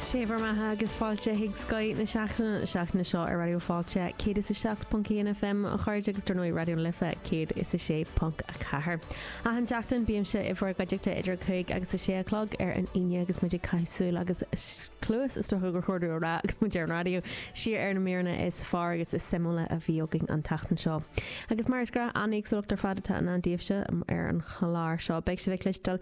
Sé bhur mbeatha agus fáilte chuig Scoth na Seachtaine na seachtaine seo ar Raidió Fáilte 107.1 FM a chairde agus dar ndóigh Raidió na Life 106.4. Achan seachtain bímse i bhur gcuideachta idir a cúig agus a sé a chlog ar an Aoine agus muid ag caitheamh súil agus cluas is dócha gur chóir dúinn a rá agus muid ar an raidió siar ar na míreanna is fearr agus is suimiúla a bhí againn an tseachtain seo. Agus mar is gnách, an-éagsúlacht ar fad atá i ndán daoibhse ar an chlár seo. Beidh sibh ag cloisteáil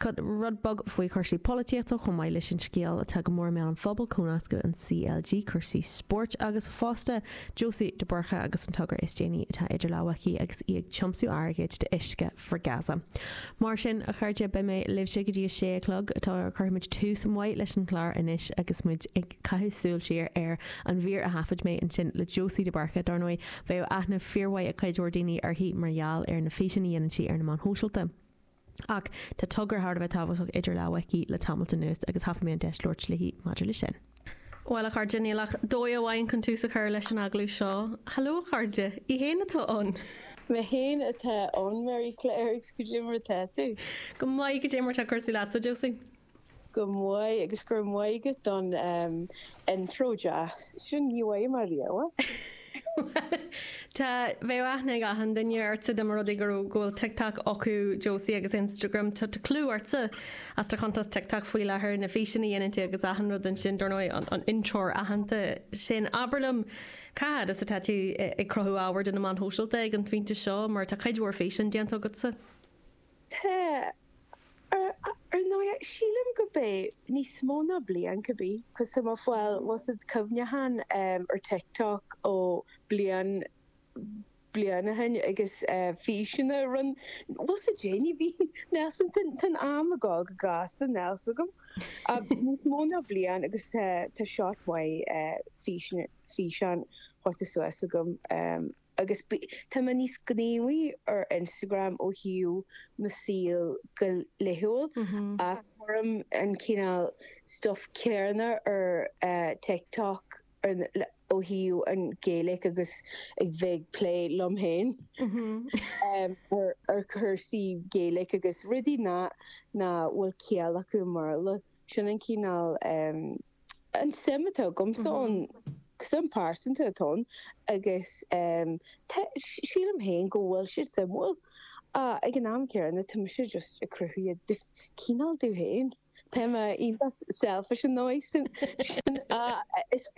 rud beag faoi chúrsaí polaitíochta chomh maith leis an scéal atá go mór i mbéal an phobail, comhnascadh an CLG, cúrsaí spóirt agus fosta Josie de Búrca agus an togra is déanaí atá idir lámha aici agus í ag tiomsú airgid d'Uisce for Gaza. Mar sin, a chairde, beidh mé libhse go dtí a sé a chlog. Cuirfimid tús maith leis an chlár anois agus muid ag caitheamh súil siar ar an mhír a thaifead mé ansin le Josie de Búrca. Dár ndóigh, bheadh aithne fíormhaith ag cuid mhór daoine uirthi mar gheall ar na físeanna a dhéanann sí ar na meáin shóisialta. Ach tá togra thar a bheith tábhachtach idir lámha aici le tamalt anuas agus thapaigh mé an deis labhairt léi maidir leis sin. Bhuel, a chairde, níl ach dóigh amháin chun tús a chur leis an agallamh seo. Hello, a chairde! Í fhéin atá ann! Mé fhéin atá ann, Mary Claire, agus cad é mar atá tú? Go maith, cad é mar atá cúrsaí leat, a Josie? Go maith agus go raibh maith agat as an intro deas sin, ní bhfaighim ariamh é! Tá, bheadh aithne ag achan duine ortsa dá mba rud é go raibh, go bhfuil TikTok acu, Josie, agus Instagram, tá clú ortsa as do chuntas TikTok faoi láthair, na físeanna a dhéanann tú agus achan rud ansin, dár ndóigh an an intreoir aitheanta sin. Abair liom, cá fhad as atá tú ag cruthú ábhair do na meáin shóisialta ag an phointe seo, mar tá cuid mhór físeán déanta agatsa? Sea, ar ndóigh, sílim go mbeadh níos mó ná bliain, could be, cos tá mé ag fáil you know sórt cuimhneachán ar TikTok ó bliain, bliain ó shin agus físeanna a rinn mé, you know sórt déanaí, so níl a fhios agam, tá'n am ag gabháil go gasta níl a fhios agam, ach níos mó ná bliain agus tá, tá scaifte mhaith físeanna, físeán caite suas agam. agus tá mé níos gníomhaí ar Instagram ó thaobh mo saol go laethúil ach cuirim an cineál stuff céanna ar TikTok ó thaobh an Gaeilge agus ag bheith ag plé liom féin ar chúrsaí Gaeilge agus rudaí nach bhfuil ciall acu i mBéarla. Sin an cineál an suim atá agamsa ann, suim pearsanta atá ann agus sílim féin go bhfuil siad suimiúil ach ag an am céanna tá mise just ag cruthú iad cineál domh féin. Tá mé iontach selfish an dóigh sin.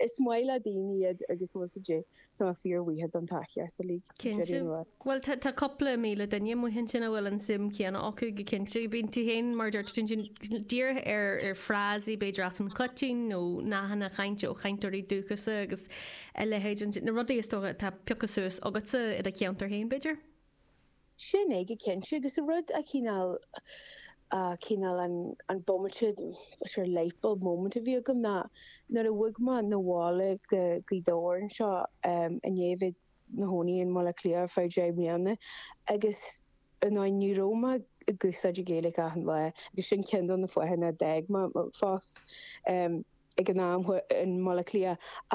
Is maith le daoine iad agus má tá siad Tá fíor mhaithe don tá cheart uilig. Cinnte. Bhuel tá cupla míle duine amuigh ansin a bhfuil an suim céanna acu go cinnte. Bíonn tú féin, mar a dúirt tú, dírithe ar frásaí b'fhéidir as an choitiantacht nó nathanna chainte ó chainteoirí dúchasa agus a leithéid, na rudaí is dócha atá pioctha suas agatsa i do cheantar féin b'fhéidir? sin é go cinnte agus a rud a' chineál, a' cineál an, an bomaite, sort of lightbulb moment a bhí agam ná nuair a bhog mé 'na bhaile go Gaoth Dobhair anseo ehm i ndiaidh bheith 'mo chónaí in mBaile Átha Cliath ar feadh deich mbliana agus you know ní raibh mé ag úsáid an Ghaeilic achan lá agus sin ceann de na fáthanna a d'fhág mé fás ehm ag an am in mBaile Átha Cliath ach